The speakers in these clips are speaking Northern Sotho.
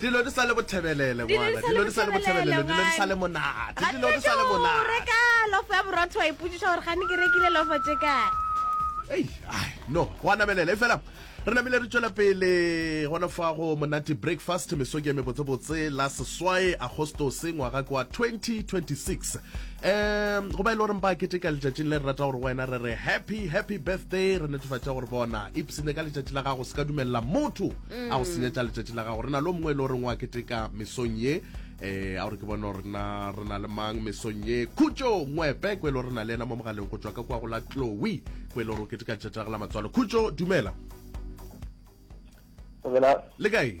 dilo di sa le bothebelele ngwana dilo di sa le bothebelele dilo di sa le monate dilo di sa le monate reka lofo ya borotho wa ipotsiša gore gane ke rekile lofo tše kae ei ai no go a namelela e fela re namile re tšwela pele gona fa go monate breakfast mesoki ya mebotsebotse la seswae agostose ngwaga kwa 2026 um go ba e le goreng ba keteka letšatšing le re rata gore wena re re happy happy birthday re netefatša gore bona ipsene ka letšatši la gago se ka dumelela motho mm. a go senyetša letšatši la gago re na le o mongwe e le goreng wa keteka mesong ye um a gore ke bone rena re na le mang mesong ye khutso ngwepe ko e le gore re na le ena mo mogaleng go tswa ka kwa go la chloe ko e le gore o keteka letšatši la go la matswalo khutso dumela le kae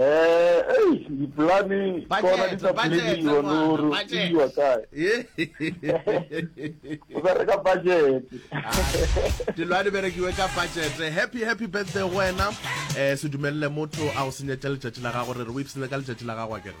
Eh, ei, dipolane kona di tla poledi yone gore o iwa kae. O bereka budget. Dilwane berekiwe ka budget. Happy happy birthday wena. Eh se dumelele motho a o senyetša letšatši la gago re re o ipsene ka letšatši la gago a kere.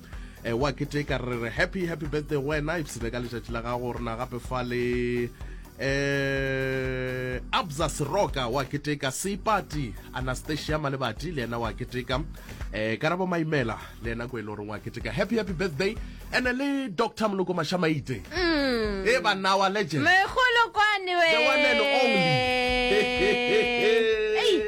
e wa keteka re re happy happy birthday go wena ipsene ka letšatši la gago rena gape fa le eh abza seroka wa keteka seipati anastasia malebati le yena wa keteka eh karabo maimela le yena ko e le goreng wa keteka happy happy birthday ene le dr moloko mashamaite mm. e ba nawa legend megolokwane we the one and only